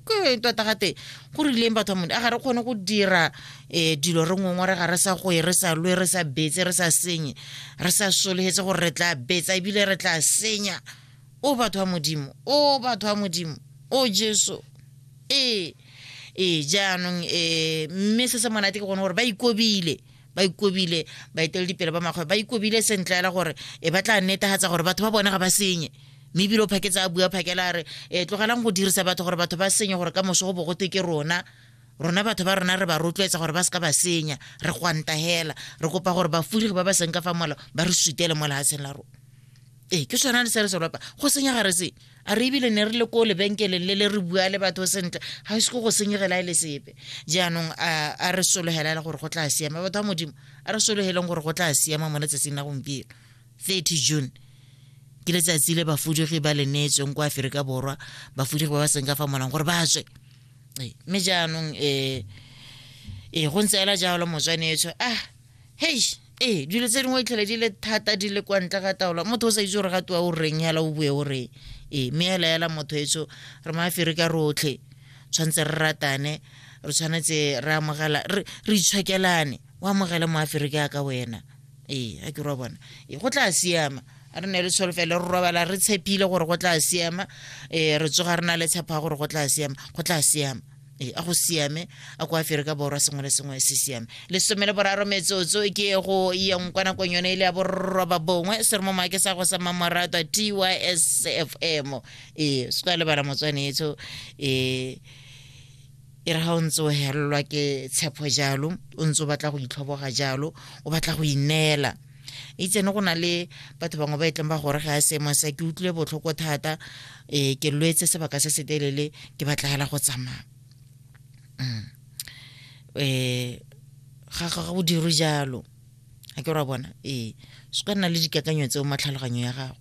ke tota ga teng go rileng batho mone a ga re kgone go dira um dilo re ngongwe re ga re sa goe re sa lwe re sa betse re sa senye re sa solegetse gore re tla betsa ebile re tla senya o batho ba modimo o batho ba modimo o jesu ee ee jaanong um mme se se monate ke gone gore ba ikobile ba ikobile baeteledipele ba makgwe ba ikobile sentle ela gore e ba tla netegatsa gore batho ba bone ga ba senye mme ebile o phaketse a bua phakela a re e tlogelang go dirisa batho gore batho ba senye gore ka moso go bogote ke rona rona batho ba rona re ba rotloetsa gore ba se ka ba senya re gwantagela re kopa gore bafulegi ba ba seng ka fa mola ba re sutele mo lehatsheng la rona ee ke sone le se re se lopa go senya ga re se a re ebile ne re le ko lebenkeleng le le re bua le batho sentle ga e se ko go senyegela e le sepe jaanong a re sologela le gore go tla siama batho ba modimo a re sologeleng gore go tla siama mo letsatsing la gompieno 30 june ke letsatsi le bafudigi ba le neetsweng kwa aferika borwa bafudigi ba ba seng ka fa molang gore ba tswe ee, mme jaanong um ee go ntse ela jalo motswanetsho ah hei ee dilo tse dingwe itlhele di le thata di le kwa ntle ga taolo motho o sa itse gore ga tiwa o reng yala o bue o reng ee mme ela yala motho etso re maafere ka rotlhe tshwanetse re ratane re tshwanetse re amogela re itshwakelane o amogele moafere ke aka wena ee a ke rwa bona ee go tla siama re ne le tsholofelo re robala re tshepile gore go tla siama um re tsoga re na le tshepa gore go tla siama go tla siama ee a go siame a ko aferika borwa sengwe le sengwe se siame lesome le boraro metsotso ke go yang kwa nakong yone e le ya borroba bongwe se re mo maake sa go sa mmamorato a tys f m ee se ka lebala motswanetso ee e re ga o ntse o helelwa ke tshepo jalo o ntse o batla go itlhoboga jalo o batla go ineela e tsene go na le batho bangwe ba e tleng ba gore ga a seemo sa ke utlwile botlhoko thata um ke lwetse sebaka se se telele ke batlegela go tsamaya um ga ga go dirwe jalo a ke ra bona ee se ka nna le dikakanyo tseo matlhaloganyo ya gago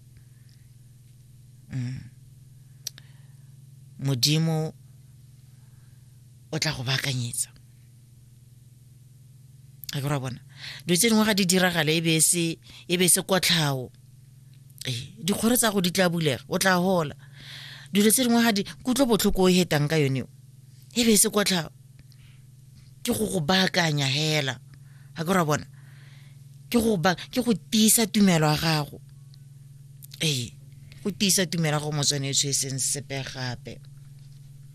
mm. modimo o tla go baakanyetsa ga ke ra bona dilo tse dingwe ga di diragale e be e se kotlhao ee dikgoro tsa go di tla bulega o tla gola dilo tse dingwe ga di kutlwe botlhoko o hetang ka yone e be e se kotlhao ke go go baakanya hela ga ke ra bona ke go ba ke go tiisa tumelo ya gago ee go tiisa tumelo ya gago motswanetso e seng sepe gape